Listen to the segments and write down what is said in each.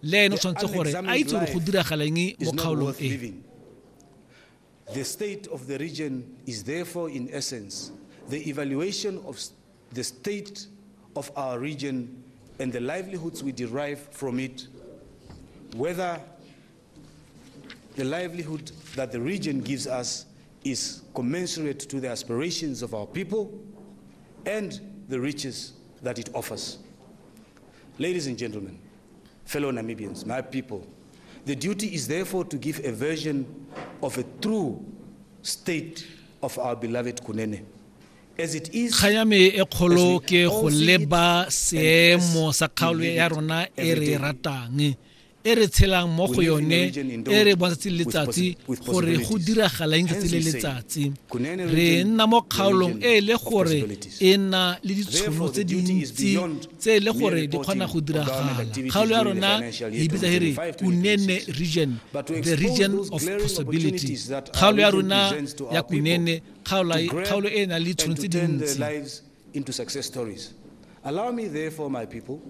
le ene o tshwanetse gore a itse gore go diragaleng mo kgaolong e The state of the region is therefore in essence the evaluation of the state of our region and the livelihoods we derive from it whether The livelihood that the region gives us is commensurate to the aspirations of our people and the riches that it offers. Ladies and gentlemen, fellow Namibians, my people, the duty is therefore to give a version of a true state of our beloved Kunene. kga ya me e kgolo ke go leba seemo sa kgaolo ya rona e re ratang e re tshelang mo go yone e re bontsatsi le letsatsi gore go diragalang tsatsi le letsatsi re nna mo kgaolong e e le gore e nna le ditshono tse dintsi tse e le gore di kgona go diragala kgaolo ya rona e bitsa e re kunene region the region of possibility kgaolo ya rona ya kunene kgaolo e e nang le ditshono tse dintsi into success stories. Allow me, therefore, my people,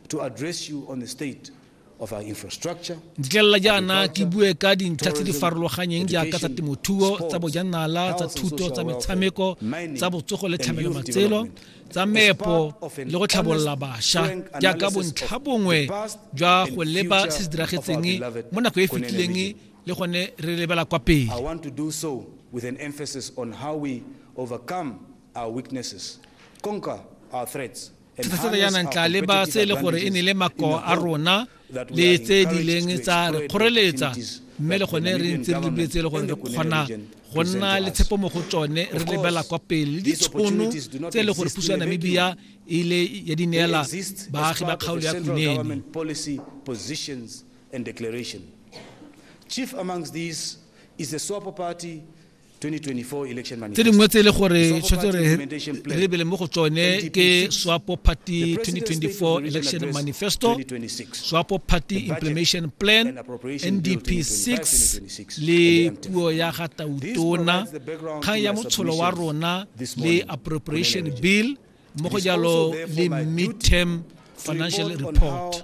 to address you on the state of our infrastructure. Ditlelela jaana ke bue ka dintlha tse di farologanyeng jaaka tsa temothuo, tsa bojanala, tsa thuto, tsa metshameko, tsa botsogo le tlhamelo matselo, tsa meepo le go tlhabolola basha jaaka bontlha bongwe jwa go leba se se diragetseng mo nako e fetileng le gone re lebela kwa pele. I want to do so with an emphasis on how we overcome Thefosano ya nantla le ba se e le gore e ne le makoa a rona le tse di leng tsa re kgoreletsa mme le gone re ntse re lebile tse e le gore re kgona go nna le tshepo mo go tsone re lebela kwa pele le ditshono tse e le gore puso ya namibia e ile ya di neela baagi ba kgaolo ya kunene Chief amongst these is the SWAPO party tse dingwe tse e le gore tshwanetse re re lebele mo go tsone ke swapo party 2024 election manifesto swapo party implementation plan ndp 6 le puo ya ga tautona kgang ya motsholo wa rona le appropriation bill mo go jalo le midterm financial report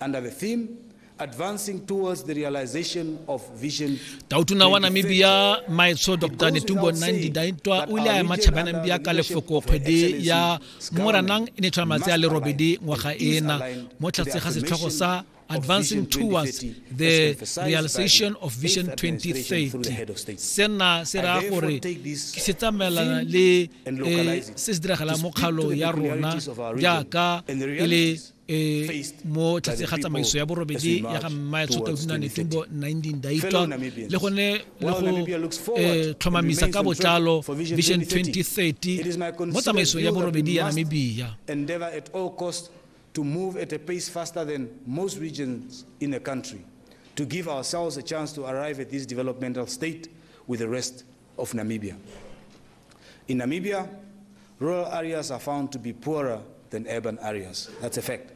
Under the theme, Advancing Towards the Realization of Vision tautona wa namibia maetsho dr netumbo nandi daintwa o ile a ema tšhabanang bja ka lefoko kgwedi ya moranang e ne tshwana malatsi a le robedi ngwaga ena mo tlhatse ga setlhogo sa advancing towards the realization of vision 2030 sena se raya gore ke se tsamaelana le eh, se se diragalang mo kgalo ya rona jaaka e le e mo tlase ga tsamaiso ya borobedi ya ga mmae tshotaudina netumbo 19 daitwa le gone le go e, tlhomamisa ka botlalo vision 2030 mo tsamaisong ya borobedi ya namibia to move at a pace faster than most regions in the country to give ourselves a chance to arrive at this developmental state with the rest of Namibia. In Namibia, rural areas are found to be poorer than urban areas. That's a fact.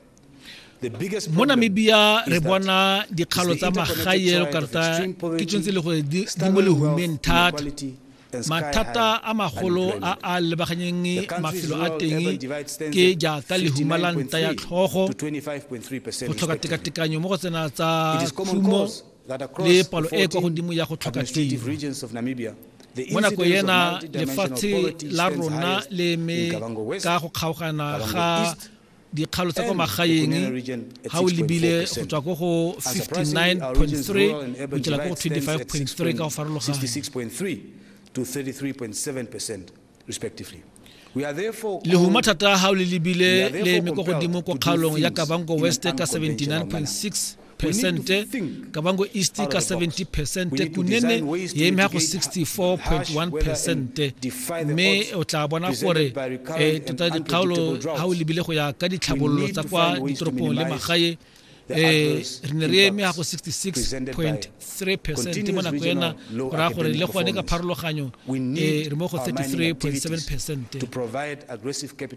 mo namibia re bona dikgalo tsa magae lo karta ke tshwanetse le gore di mo lehumeng thata mathata a magolo a a lebaganyeng mafelo a teng ke jaaka lehuma la nta ya tlhogo go tlhoka tekatekanyo mo go tsena tsa khumo le palo e kwa godimo ya go tlhoka tiro mo nako ena lefatshe la rona le eme ka go kgaogana ga dikgalo tsa kwa magaeng ga o lebile go tswa ko go 59.3 go tsela ko go 25.3 ka go farologana respectively. lehuma thata ga gago le lebile le eme kwa godimo kwa kgaolong ya kabango west ka 79.6 percente kabango east ka 70 percente kunene ya eme go 64.1 percente mme o tla bona gore um tota dikgaolo ga o lebile go ya ka ditlhabololo tsa kwa ditoropong le magae eh re ne re eme ya go 66.3 mo nako ena go raya gore le gone ka pharologanyo eh re mo go 33.7